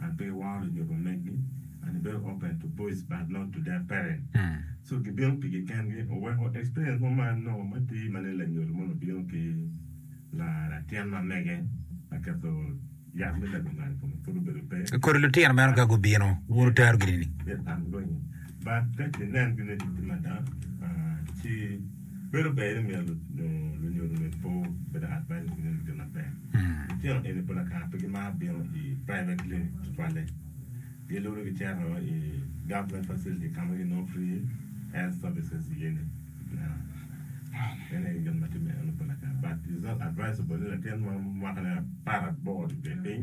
I pe waro nyodo megi and I very open to boys but not to their parents so gi bino pigi kengi oweko experience mo ma anongo matir mane lanyodo moni obino ki latin ma mege ma keto yat me lego ngat I kome pud obedo pe Kodi lutino meno ka gubino wun wutero gini ni? Yes I'm going in but ka ki nen gini ni gitye mada ah ci Bedo ber ni miyo lunyodo med po me dakar bayo nyo neno gin maber. Litino eni pol akar pe gimaro bino i private clinic tutwalle. Giluro gicito i government facility ka ma ginongo free health services iye ni. Meno aye gin ma timme eno pol akar but it's not advisable ni latin ma mwakane apar aboro tye piny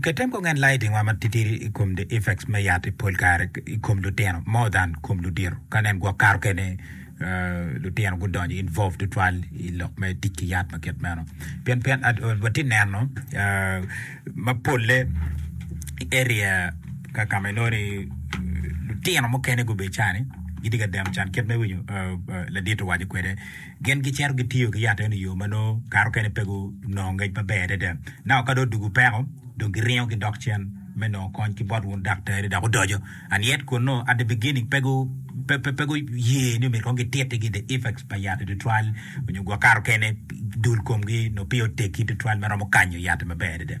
Ketem kong en lae dingwa matitidi i kom the effects me yat i pol kare i kom lutino more than kom ludito ka nen gwok kato kene lutino gudonyo involve tutwal i lok me tic ki yat ma kit meno pien pien wati neno ma polle i area kaka ma inoni lutino mukene gubedo cani gitye ka deno can kit me winyo ladit owaco kwede Gin gicito gitiyo ki yat eno i yo ma nongo kare mukene pe gunongo ngec maber adada. Naka ka dong odwogo peko, dong giringo gidok cen me nongo kony ki bot wun daktari. Dok odoco, and yet kunnu, at the beginning, pe gu, pe, pe, pe guye ni omyero kong gitittigi the effects pa yat-ti tutwal, nyo gwok kare mukene dul komgi nongo peya oteggi tutwal me romo kanyo yat-ti maber adada.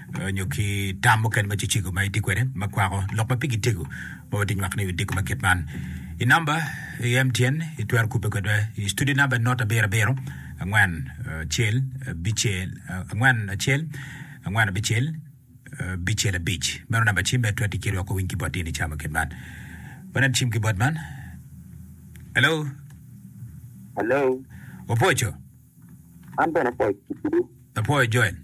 nyo ki tam mukene ma cicego ma itye kwede ma kwako lok ma pigi tego ma watye nywako ni odiko ma kit man. I namba i MTN itwero kubbe kwedwa i studio namba enot abiro abiro angwen acel abicel angwen acel angwen abicel bicel abic meno namba cim me twero tikiri wako winy ki bot ini cama kit man. Wanen cim ki bot man. Hello, Hello, opwoco, an bene pwoc kitiyo. apwoyo Joel.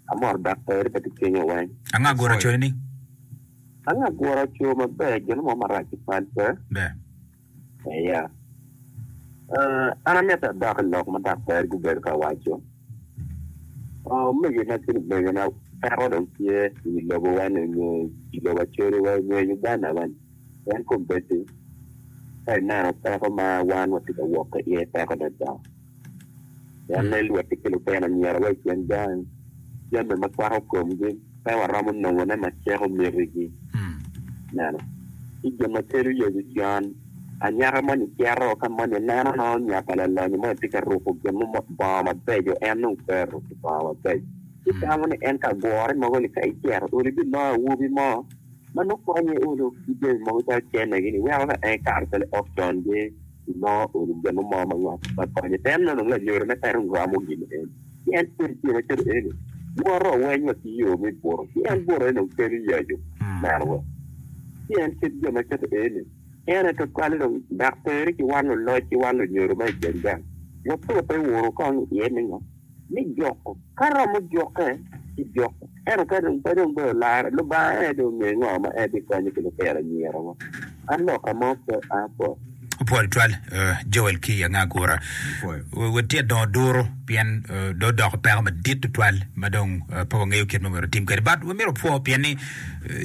Amor dok pe iribba ki cwinya weng. Ango agura aco ni? Ango agura aco maber gin mo marac i pal pe? Be. Eya. Uh, an amito adok i lok ma dok peri gubedo ka waco. Oh, omege na ki lumege na peko dong tye i wi lobo wa ni nyo i lobo Acholi wa nyo i Uganda wa ni pien kombeddi ka ineno peko ma wan watye ka wok ki iye peko adada. Pien ni luoti ki lutino anyira wa i kin gang jami ma kwako komgi pe waromo nongone ma ciko mitigi. Neno ki gin ma kelo Yecu can. Anyaka moni cito ka moni neno nongo nya pa lalonyo moni tye ka ruko gin mo, bongo mabeco. En dong pe oruko bongo mabeco. Ci tamo ni en ka gure mogo ni, 'Ka icito ulu ibiloyo awobi mo ma nongo konye ulu ki jami mogo calo cennegi-ni, weko ka en ekato calo i ot congi. Inongo uni gin mo ma ngok ma konye. Pien meno dong lanyori me kare dong ramo gin eni. Ci en kodi tye macalo eni, Woro, oweny wa ki yo me buto. Ci en buto, en dong kelo yacu. Meno wa. Ci en kit jo macalo eni. Pien ento twali dong dok peri ki wan luloc ki wan lunyodo ma i gang gang. Watute wunu kong iye me ngo? me joko, ka romo jokke ci joko, ento ka dong pe dong bedo larre, Lubanga en aye dong ongeyo ngo ma en bikonyo ki lutino anyira wa. An loka mo pe apwoyo. Opwoyo tutwal Joel ki anga agura. Wati adongo duru pien do doko peko madit tutwal ma dong pe wangeyo kit ma myero tim kwede. But wamyero pwo pien ni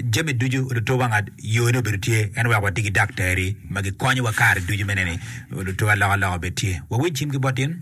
jami ducu luto wangat yone obedo tye en wek wati ki daktari ma gikonyowa kare ducu me neni luto aloka aloka bed tye. Wawic cim ki bot in.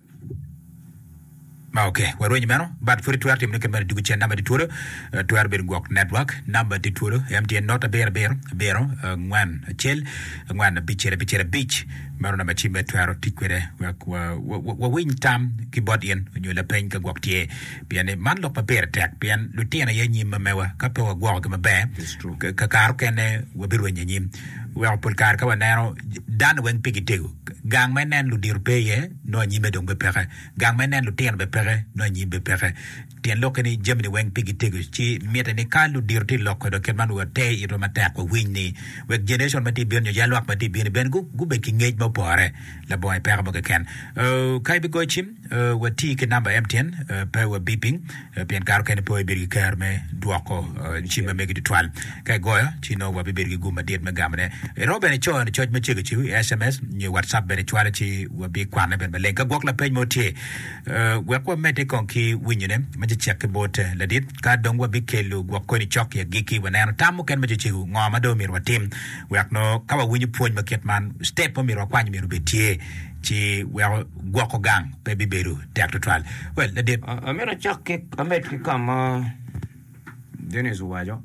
Ma ok, warwenyo meno but pwod itwero timo ne kit meno dwogo cen number tye twolo twero bedo gwok network number tye twolo MTN not abiro abiro abiro angwen acel angwen abicel abicel abic meno number cim ma itwero tic kwede wek wawiny tam ki bot in onyo lapeny ka gwok tye pien ni man lok ma pire tek pien lutino aye nyim ma mewa ka pe wagwokogi maber kakare okene wabirwenyo anyim weko pol kare ka waneno dano weng pigi tego Gang ma inen ludito pe iye, nongo anyime dong pe peke. Gang ma inen lutino bene peke, nongo anyim pe peke. Tyen lokke ni jami-ni weng pigi tego, ci mitte ni ka ludito tye loko dong kit man wi wate itwa matek wawiny ni wek generation ma tye bino nyo jal lwak ma tye bino-ni bene gubed ki ngec ma opore labongo i peko mo keken. Ka ibigoyo cim. Wati ki namba MTN pe wabiping pien kare okene pe wabibedo ki kero me dwoko cim ma mege tutwal. Ka igoyo ci nongo wabibedo ki gum madit me gamone. Iromo bene cono coc ma cego cego i SMS nyo WhatsApp bene cwale ci wabikwane bene maleng. Ka gwok lapeny mo tye eh, wek wamedde kong ki winyone me cecek ki bot eh, ladit ka dong wabikelo gwok koni cok i agikki waneno tam mukene me cecego ngo ma dong omyero watim wek nongo ka wawinyo pwony ma kit man step ma omyero wakwany omyero obed tye. ci weko gwoko gang pe bibedo tek tutwal. Well, ladit. A- Amito acak ki amed ki ka ma Dennis owaco.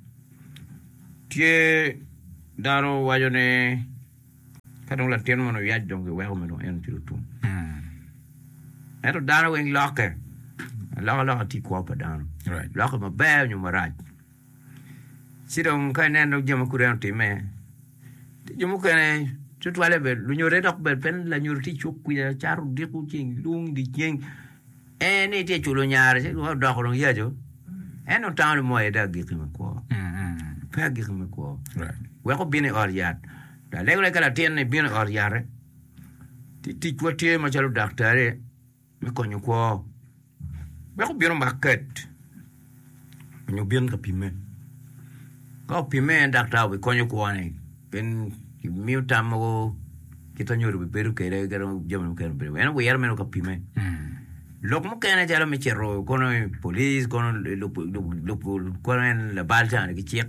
Tye dano waco ni ka dong latin mono oyac dong giweko me dong en oci otum. Mm, Ento dano weng lokke. Aloka loka tye kwo pa dano. Right. Lokke maber nyo marac. Ci dong ka ineno jo ma kudi en otimme, ti jo mukene tutwalle bene lunyote dok bene pe lanyodo ti cuk kwica cato odiko ceng lung idye ceng en ni itye culo nyare ci dong odoko dong yaco en dong tango ni mo aye dong agikki me kwo pe agikki me kwo wek obin i ot yat lalego lagi ka latin-ni bino i ot yate ti ticwa tye macalo daktari me konyo kwo wek obino maket onyo obin ka pimme ka opimme daktar obi konyo kwone pien kimiyo tam mogo kit ma nyodo obi bedo kede kadi ma jami mukene obedo en wire mere ka pimme lok mukene calo me cito kono i police kono lubo kono en labal cani ki cik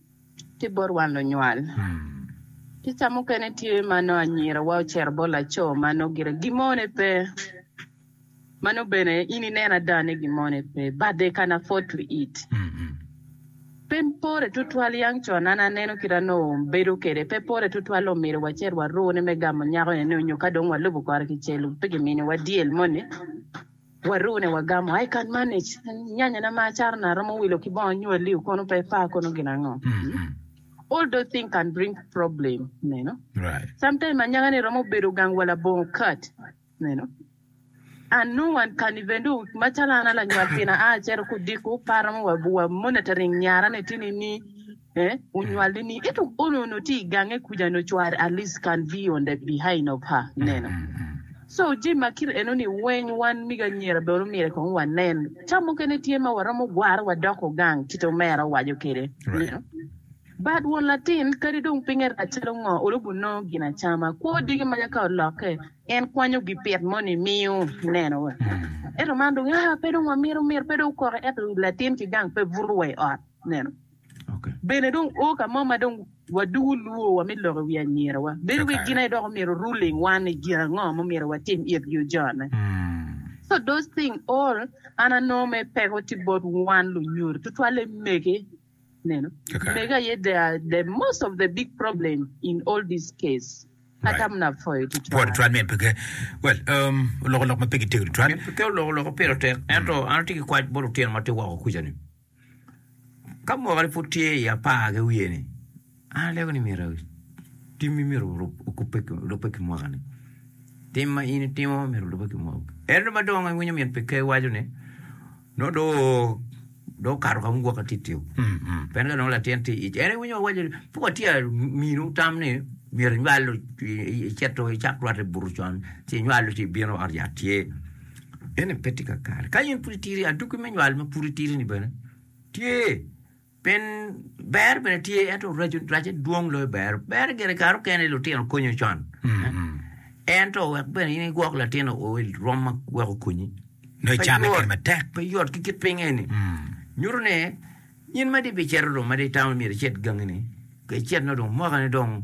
tye bot wan lunywal. Kica mukene tye ma nongo anyirawa ocito bot laco ma nongo gire gimone pe, ma nongo bene in ineno ada ni gimone pe, but they can afford to eat. Pe pore tutwal yang con, an aneno kit ma nongo bedo kwede, pe pore tutwal nongo myero wacit warune me gamo nyako-ni nongo nyo ka dong walubo kore ki celu, pe giminiwa deal moni. Waru ne wagamo I can manage nyanya na ma acaro na aromo wilo ki bongo nyo aliu kono pe par kono gin ango all those thing can bring problem meno sometime anyaka ni romo bedo gang wa labongo kat meno and no one can even do macalo an alanywal pina a acito kudiko par romo wa monitoring nyara ni tini ni Ee, onywale ni, ento on onongo tye i gange kuca nyo cware at least can be on the behind of her, ineno. So jami ma kit enoni weng wan mege anyira bene omyero kong wanen. Ca mukene tye ma waromo gwarre wadoko gang kit omera owaco kwede, ineno. But won latin kadi dong pinye rac calo ngo olubo nongo gin acama. Kwo diki maca ka olokke en kwanyo gipit moni miyo, ineno. Ento man dong, aa, pe dong wamito, myero pe dong okoke ento latin ki gang pe buto wa i ot, ineno. Bene dong o ka mo ma dong wadugu lwor wa me lok i wi anyirawa, bedo wek gin aye dok omyero ruling wan ni gin ango ma omyero watim it yo jone. So those thing all an anongo mere peko tye bot wan lunyodi tutwalle mege. Ineno? Mege aye they are the most of the big problem in all this case. Atam na pwoyo Bot tutwal. tutwal me peke. Well, um, oloko lok ma pe gitegno tutwal. Me peke oloko lok pire tek, ento an atye ki kwac bot lutino ma tye woko kuca ni. Ka mwaka ni pud tye i apar ki wiye ni an aleko ni myero tim mi myero okube lube ki mwaka ni tim ma in itimo myero olube ki mwaka ento ma dong awinyo min pi ker waco ni no do do okato ka mwaka titio pien ka dong latin tye ic en iwinyo wawaco ni pud watye minu tam ni myero inywalo iceto icak rwate buto con ci inywalo ci ibino ot yat tye Eni pe tye kakare. Ka in pud itiri, adwogi me nywal ma pud itiri-ni bene tye. Pien ber bene tye, ento raco racce dwong loyo ber. Ber gire kare okene lutino konyo con. Ento wek bene in igwok latin o i rwom ma wek okonyi. Nongo Pe icame yot. kit matek. Pe yot ki kit piny eni. Nyuto ni in ma di bicito dong ma di itamo myero icit gangi-ni, ka icit-no dong mwakane dong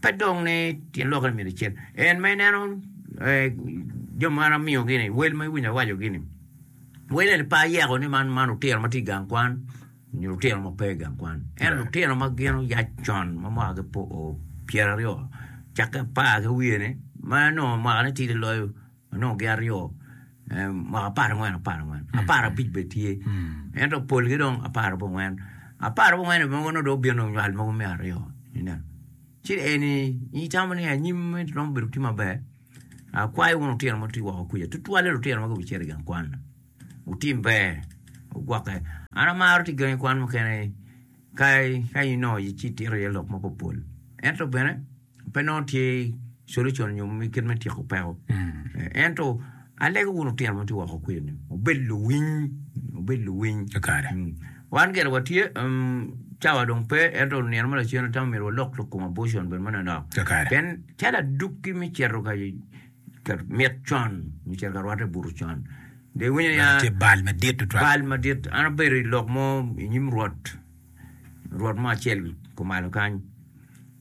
Pe dong ni tyen lokere myero icen. En ma ineno jo ma an amiyogi-ni, wel ma iwinyo awacogi-ni, wel eni pe ayeko ni man lutino ma tye i gang kwan nyo lutino ma pe i gang kwan. Ento lutino ma gin oyac con ma mwakagi pyeraryo cakke apar ki wiye-ni ma onongo mwakane tidi loyo Onongo gin aryo, mwaka apar angwen, apar angwen, apar abic bene tye. Ento polgi dong apar abongwen. Apar abongwen bene onongo dong obino nywal mogo me aryo. Ineno? Ci eni itamo ni anyim meno romo bedo tye maber. Akwayo wun lutino ma wutye woko kwica, tutwalle lutino ma gubicito i gang kwan-na. Wutim ber, wugwokke. An amaro tic gangi kwan mukene ka inongo ci itito iye lok mapol pol. Ento bene. pe nongo tye solution nyo kit me tyeko peko. Ento alego wun lutino ma tye woko kwiyo ni wubed luwiny, wubed luwiny. Kakare. Mm. Wan gire watye um, cawa dong pe ento nino ma lacen atamo myero walok lok kom abortion bene manonok. Kakare. Pien calo adukki me cito ka ka mit con, me cito ka rwatte buto con. De winyo ya Tye bal madit tutwal. bal madit. An abedo i lok mo i nyim rwot, rwot mo acel kumalo kany.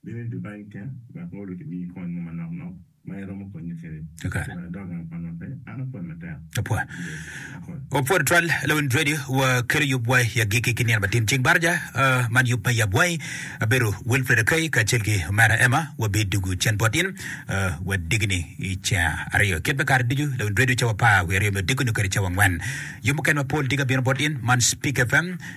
Bino i Dubai keken wek Molly omiyi kony mo manok nok ma iromo konye kwede. Ciro adok gang pa nwatte, an apwod matek. Apwod. Apwod. Wapwod twal lawiny Radio wa kelo yub wa i agikki ki nino matin cing baraja. Man yub ma yab wangi abedo Wilfred Akay kacel ki omera Emma wa bi dugu cen bot in wa digini i caa aryo kit me kare ducu lawiny Radio cawa apar wiye aryo me odiko nyo kede cawa angwen. Yub mukene mapol diga bino bot in man Speak FM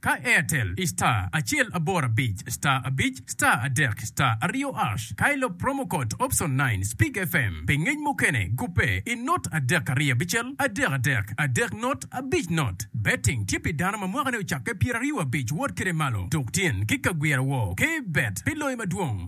Ka Airtel i star acel aboro abic star abic star adek star aryo ash ka ilop promo code option nine speak FM pi ngec mukene gubbe i not adek ariyo abicel adek adek adek not abic not Betting tye pi dano ma mwakane ocakke pyeraryo abic wot kede malo tuk tyen ki kagwira woo kbet pi loyo madwong.